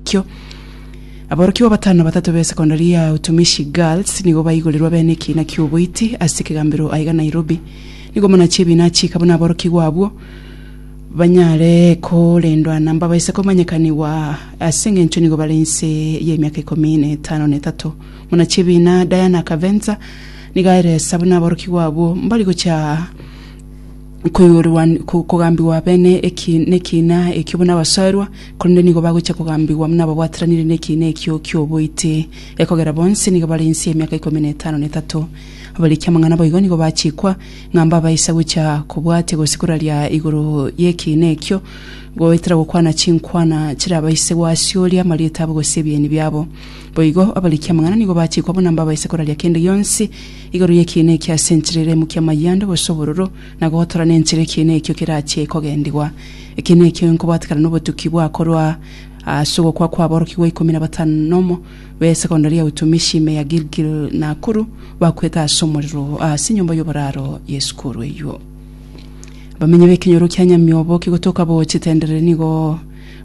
Kio, aborokigwa batano batato be secondary ya Utumishi Girls nigo baigorirwe bene ekiina ki'oboiti ase ekegambero aiga Nairobi. Nigo muna chibiina achiika buna aborokigwa abwo banyare korendwa na mbabaise komanyekanigwa ase eng'encho nigo bare inse y'emiaka ikomi na etano na etato. Muna chibiina Diana Kavenza nigo aeresa buna aborokigwa abwo mbari gocha koigorwa kogambigwa abene eki nekiina ekio buna abasoerwa, korende nigo bagochia kogambigwa buna ababwatiranire nekiina ekio ki'oboiti, ekogera bonsi nigo bare inse y'emiaka ikomi na etano na etato. Abarikia amang'ana boigo nigo bachikwa, ng'a mbabaisa gochia kobwatia gose koraria igoro y'ekiina ekio, goetera gokwana chinkwana chirabaise gwasiooria amarieta abo gose ebieni biabo. Boigo abarikia amang'ana nigo bachikwa buna mbabaisa koraria kende gionsi, Igoro y'ekiina ekio ase enchera eremo kia mayando gose obororo, na gotora nenchera ekiina ekio kerachie kogendigwa. Ekiina ekio nkobatekana nobotuki bwa korwa ase ogokwa kw'aborokigwa ikomi na batano nomo b'esekondari ya utumishi ime ya Gilgil Nakuru bakwete ase omorero ase enyomba y'oboraro y'esukuru eyio. Abamenyi b'ekenyoro kia Nyamioboke gotoka bochia tenderere nigo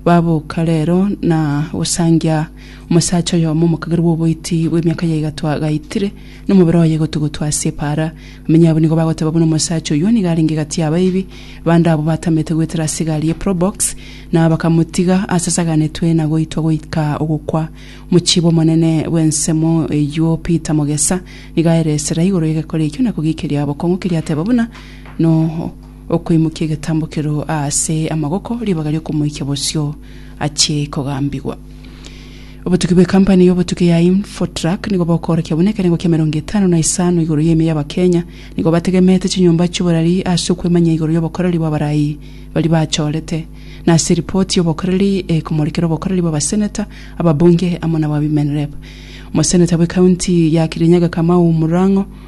baboka rero na gosangia Omosacha oyomo omokagerwa oboiti bw'emiaka ya igato agaitire, na omobere oye gotugutu ase epaara. Bamenyi abwo nigo bagoteba buna omosacha oyio nigo arenge gati y'abaibi bande abwo batamete goetera ase egari ye probox, na bakamotiga asasaganetwe na goitwa goika ogokwa. Omochibi omonene bw'ensemo eyio Peter Mogesa nigo aeresera igoro y'egekore ekio na kogiikeria bokong'u keria ateba buna no Okoimokia egetambo keroo aase amagoko, ribaga riokomoikia bosio achie kogambigwa. Obotuki bwe kampani ya obotuki ya Infotrak nigo bokoorokia buna ekerengo kia emerongo etano na isano igoro y'emia y'Abakenya nigo bategemete chinyomba chi'oborari ase okwemanyia igoro y'obokoreri bw'abarai baria bachorete na ase ripoti y'obokoreri ekomorekera obokoreri bw'abaseneta, ababunge amo nab'abimenrep. Omoseneta bwe county ya Kirinyaga Kamau Murang'o.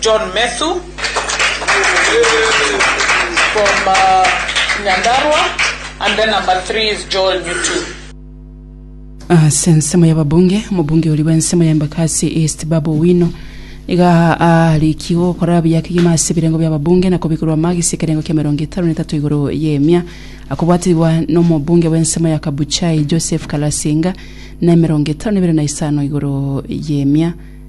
John Methu from Nyandarua and then number three is Joel Nyotu. Ase ensemo y'ababunge, omobunge oria bw'ensemo ya Embakasi East Babu Owino nigo aarikigwe gokora buya kegima ase ebirengo bi'ababunge na kobikorwa amagisi ekerengo kia emerongo etano na etato igoro y'emia akobwaterigwa n'omobunge bw'ensemo ya Kabuchai Joseph Kalasinga na emerongo etano na ebere na isano igoro y'emia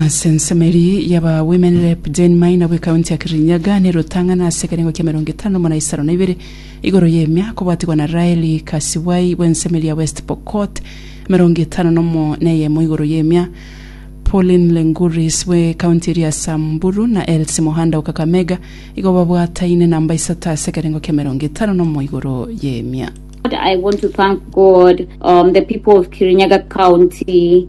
Ase ensemo eria y'aba Women Rep, Jane Maina bwe county ya Kirinyaga ne rotang'ana ase ekerengo kia emerongo etano muna isano na ibere igoro y'emia kobwatigwa na Raeli Kasibwai bw'ensemo eria ya West Pokot emerongo etano nomo na eyemo igoro y'emia Pauline Lenguris bwe county eria ya Samburu na Elsie Mohanda o Kakamega igo babwataine namba isato ase ekerengo kia emerongo etano nomo igoro y'emia. I want to thank God, um, the people of Kirinyaga County,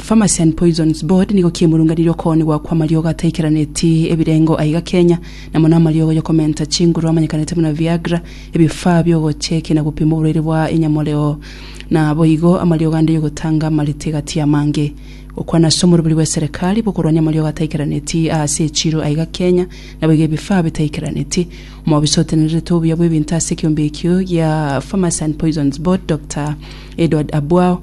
Pharmacy and Poisons Board nigo kiemurunganire okoonigwa kw'amariogo ataikeraneti ebirengo aiga Kenya, na mono amariogo y'okomenta chinguru amanyekanete buna Viagra, ebifaa bi'ogochekia na gopima oborwaire bwa enyamoreo, na boigo amariogo ande y'ogotanga amarete gati y'amange. Gokwana ase omorobori bw'eserekari bw'okorwania amariogo ataikeraneti aase echiiro aiga Kenya, naboigo ebifaa bitaikeraneti. Omobisa otenenerete obuya bw'ebinto ase ekeombe ekio gia Pharmacy and Poisons Board, Doctor Edward Abwao,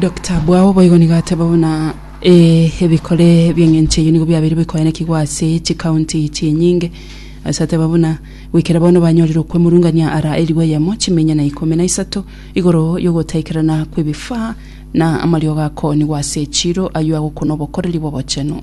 Dokita bwao boigo nigo ateba buna eh, ebikore bi'eng'encho eyio nigo biabeire bikoenekigwa ase chikaunti chinyinge ase ateba buna goikera bono banyorire okwemurungania ara eribu eyemo chiminya na ikomi na isato igoro y'ogotaikerana kw'ebifaa na amariogo akoonigwa ase echiro ayio agokwa nobokoreri bw'obochenu.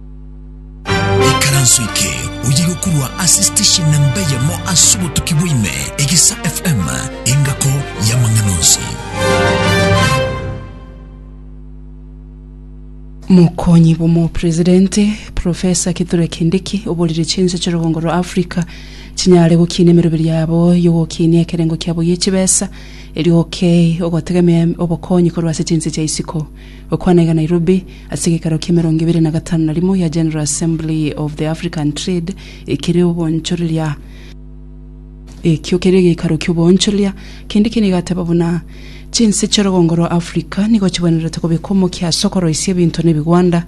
Ekaranso eke oyige korwa ase station na mbeyemo ase obotuki bwaime, Egesa FM, engako y'amang'ana onsi. Mokonyi bw'omopresidente, Professor Kithure Kindiki, oborire chinse chi'orogongo rwa Africa chinyare gokiina emeroberi yabo y'ogokinia ekerengo kiabo gie chibesa, erio okay ogotegemea obokonyi korwa ase chinse chia isiko. Gokwana iga Nairobi, ase egeikaro ki'emerongo ebere na gatano na rimo gia General Assembly of the African Trade ekere obonchoreria. Ekio kere egeikaro ki'oboonchoreria, kende kende igateba buna chinse chi'orogongo rwa Africa nigo chibwenerete kobeka omokia ase okoroisia ebinto na ebigwanda.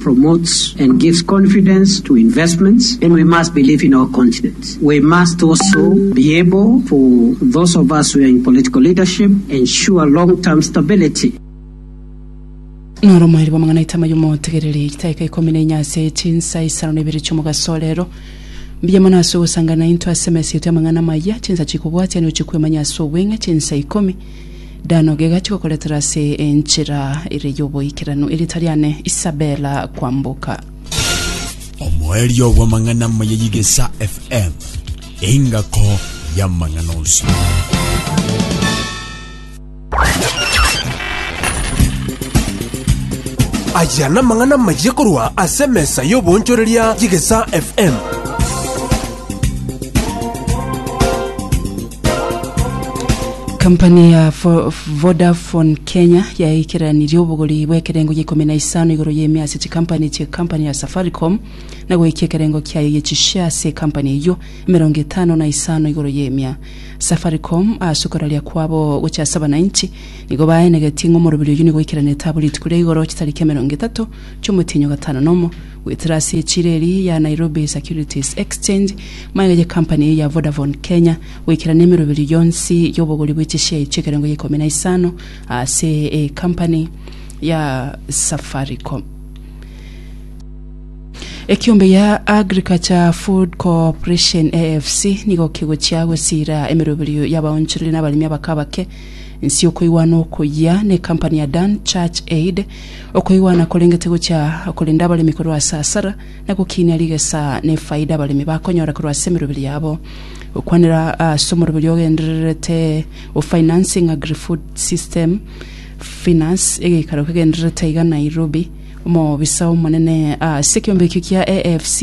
promotes and gives confidence to investments then we must believe in our continent. We must also be able for those of us who are in political leadership ensure long term stability. Noro omoerio bw'amang'ana aitama y'omotegereri, chitaika ikomi na inye ase chinsa isano na ibere chi'omogaso o reero. Mbuya mono ase ogosangana naintwe ase emesa yaito y'amang'ana amaya, chinsa chikobwatia nigo chikwemanya ase obweng'e, chinsa ikomi, Dano gegacha gokoretera ase enchera ere y'oboikeranu erieta riane Isabella kwamboka. Omoerio bw'amang'ana amaya y'Igesa FM, engako y'amang'ana onsi. Aya namang'ana amaya korwa ase emesa y'oboonchoreria y'Igesa FM. Kampani ya Fo- Vodafone Kenya yaaikeranirie obogori bw'ekerengo gia ikomi na isano igoro y'emia ase chikampani chia ekampani ya Safaricom na goikia ekerengo kiayo gia chishare ase ekampani eyio emerongo etano na isano igoro y'emia. Safaricom ase okoraria kwabo gochia ase abanainchi nigo baenegetie ng'a omoroberi oyio nigo aikeranetie abo rituko ria igoro chitariki emerongo etato chi'omotienyi o gatano nomo Gwetera ase echiro eria ya Nairobi Securities Exchange, maega ye company eye ya Vodafone Kenya goikerana emeroberio yonsi y'obogori bwe chishare chi'ekerengo gia ikomi na isano ase ecompany ya Safaricom. Ekiombe gia Agriculture Food Cooperation, AFC, nigo kegochia gosiira emeroberio y'abaonchoreria na abaremi abake abake Inse okoigwana okoyia nekampani ya Dan Church Aid, okoigwana korengete gochia korenda abaremi korwa ase asara, na gokinia rigesa na efaida abaremi bakonyora korwa ase emeroberi yabo. Gokwanera ase omoroberi ogendererete o Financing Agri-Food System, FINAS, egeikaro kegendererete aiga Nairobi, Omobisa omonene ase ekeombe ekio kia AFC,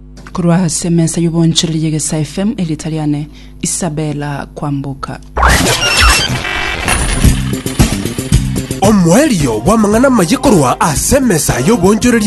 Korwa ase emesa y'obonchoreri ya Gesa FM, erieta riane Isabella Kwamboka. Omoerio bw'amang'ana amaye korwa ase emesa y'obonchoreri